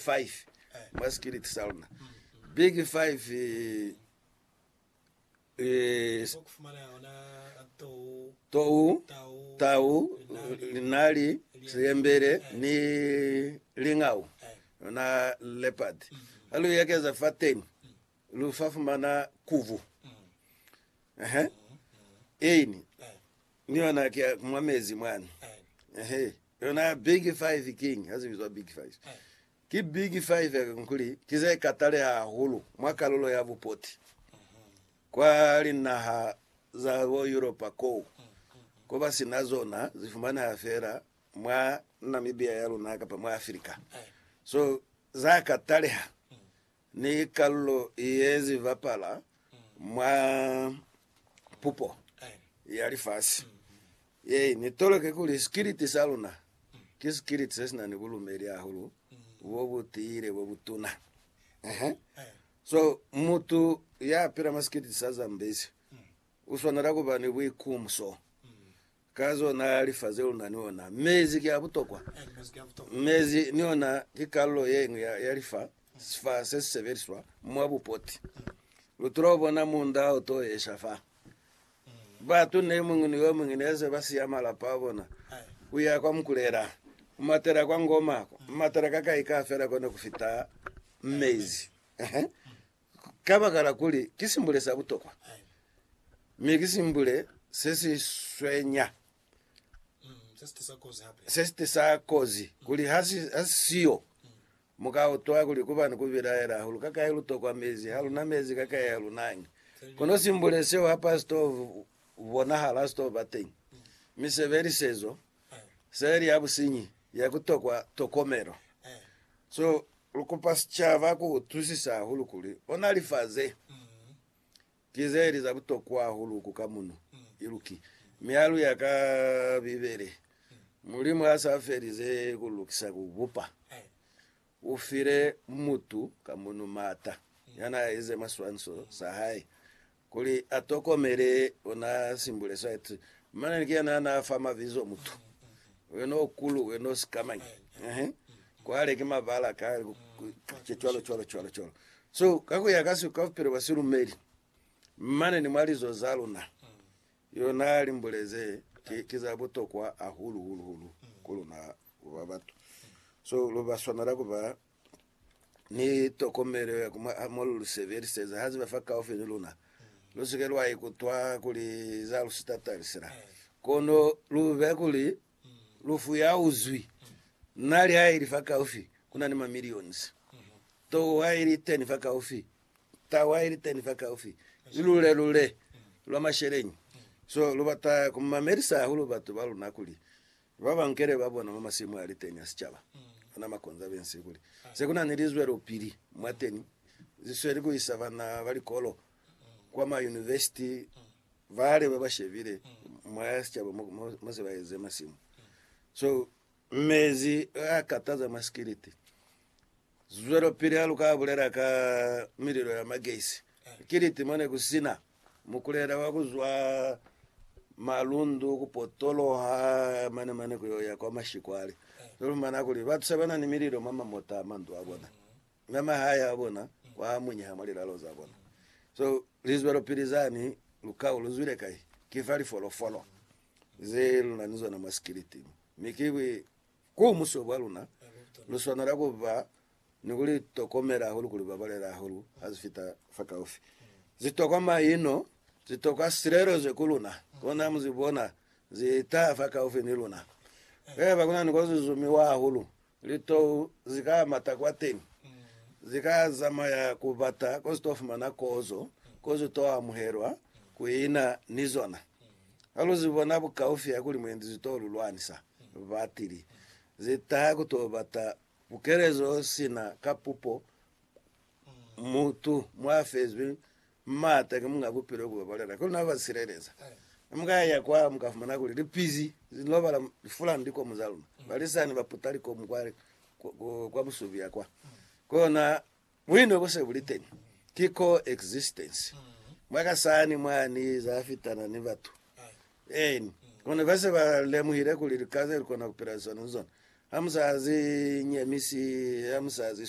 5 mwa Skillet sa luna. Big 5 eh, tou, tau, linali, siyembele, ni lingau, na leopard. Ha lu ekeza fa teni, lu fa fumana kuvu. Ehe. Eini, ni yona ki ya mwa mezi mwani. Ehe. Yona ya Big Five King ya zibizwa Big Five. Ki Big Five kuli ki ze kataleha hahulu mwa kalulo ya bupoti kwa linaha za bo Yuropa koo, koba sina zona zi fumaneha feela mwa Namibia ya luna kapa mwa Africa. So za kataleha Ni kalulo ye zi bapala mwa pupo ya lifasi ye ni toloke kuli sikiliti sa luna ki sikiliti se si na ni bulumeli hahulu bo bu tiile bo bu tuna. Ehe. So, mutu ya pila mwa sikiliti sa Zambezi u swanela ku ba ni buikumso. Ka zona lifa ze luna ni ona. Mezi ki a butokwa. Mezi ni ona ki kalulo ye ñwi ya lifa, sifa se si sebeliswa mwa bupoti. Lu tula ku bona munda o to esha fa. Batu ne muñwi ni yo muñwi ne se ba siya malapa a bona, ku ya kwa Mukulela, ku matela kwa Ngoma, ku matela ka kai ka fela ko ne ku fita mezi. Kabakala kuli ki simbule sa butokwa, mi ki simbule se si swenya, se si tisa kozi, kuli ha si ha si siyo, mu ka utwa kuli ku ba ni ku bilaela hahulu ka kai lu tokwa mezi, ha lu na mezi ka kai ha lu nañi. Kono simbule seo ha pa si to bonahala, ha si to ba teñi. Mi sebelisezo. Seli ya businyi ya ku tokwa tokomelo. So lu kupa sicaba ku utwisisa hahulu kuli ona lifa ze ki ze li za butokwa hahulu ku ka muno i lu ki. Mi ha lu ya ka Bibele, Mulimu ha sa felize ku lu lukisa ku bupa. U file mutu ka munu m'ata ya n'a ize mwa swanso sa hae kuli a tokomele, u n'a simbule swa eti, Mane ni kena ha n'a fa mabizo mutu we n'o kulu, we n'o sikamañi, ehe, kwale ki mabala ka ke cwalo cwalo cwalo cwalo. So, ka ku ya ka siko ka bupilo bwa silumeli, mane ni mwa lizo za luna, Yona limbule ze ki, ki za butokwa ahulu hulu hulu ku luna kuba batu. So lu ba swanela kuba ni tokomelo ya kuma a mo lu li sebeliseza ha ziba fa kaufi ni luna. Lu si ke lwa ikutwa kuli za lu sitatalisela. Kono lu be kuli lufu ya uzwi na lihaili fa kaufi, ku na ni ma millions. Towa ili teni fa kaufi, Tawa ili teni fakaufi ni lule-lule lwa masheleñi. So, lu bata ku mamelisa hahulu batu ba luna kuli ba ba nkele ba bona mwa masimu a li teni a sicaba, ona makonza bensi, kuli se kuna ni lizwelopili mwa teni li sweli ku isa bana ba likolo kwa ma univesiti bale ba ba shebile mwa sicaba mo, mo, mo se ba eze masimu. So, mezi a kataza mwa sikiliti. Zwelopili haluka bulela ka mililo ya magesi. Ki niti mone kusina mukulela wa kuzwa malundu kupotoloha mane mane kuyoya kwa mashikwale. Zalumana kuli batu sebanani mililo mwa mamota a mandu abona, mi amahae abona wa munyeha mwa lilalo zabona. So lizwelopili zani lukau luzwile kai? Kifa lifolofolo ze lunani zona mwa sikiliti mo. Mi ki Ku muso kwa luna, lu swanela ku ba ni ku li tokomela hahulu kuli ba balela hahulu ha ze fita fakaufi. Ze tokwa maino, ze tokwa silelezo ku luna, kono mu ze bona ze taha fakaufi ni luna. He ba ku na ni ko ze zumiwa hahulu, litou ze ka mata kwateñi, ze ka zamaya ku bata ko ze to fumana kozo, ko ze to amuhelwa, ku ina ni zona. Ha lu zi bona bukaufi ha kuli mwendi zi t'o lu lwanisa, batili zi taha ku t'o bata bukelezo sina ka pupo. Mutu mwa fezwi m'ata ki Muñ'a Bupilo u babalela ki luna, u ba sileleza. Ha mu ka ya kwa, mu ka fumana kuli lipizi li lobala lifulan'i likomu za luna. Balisani ba puta likomu kwa, kwa busubi ya kwa. Ki ona Buino bo se bu li teñi ki co-existence mwa ka sani mwa ni za fitana ni batu. Eeni, kono ba se ba lemuhile kuli lika ze lu kona ku pila zona ni zona ha mu sa zi nyemisi, ha mu sa zi swi.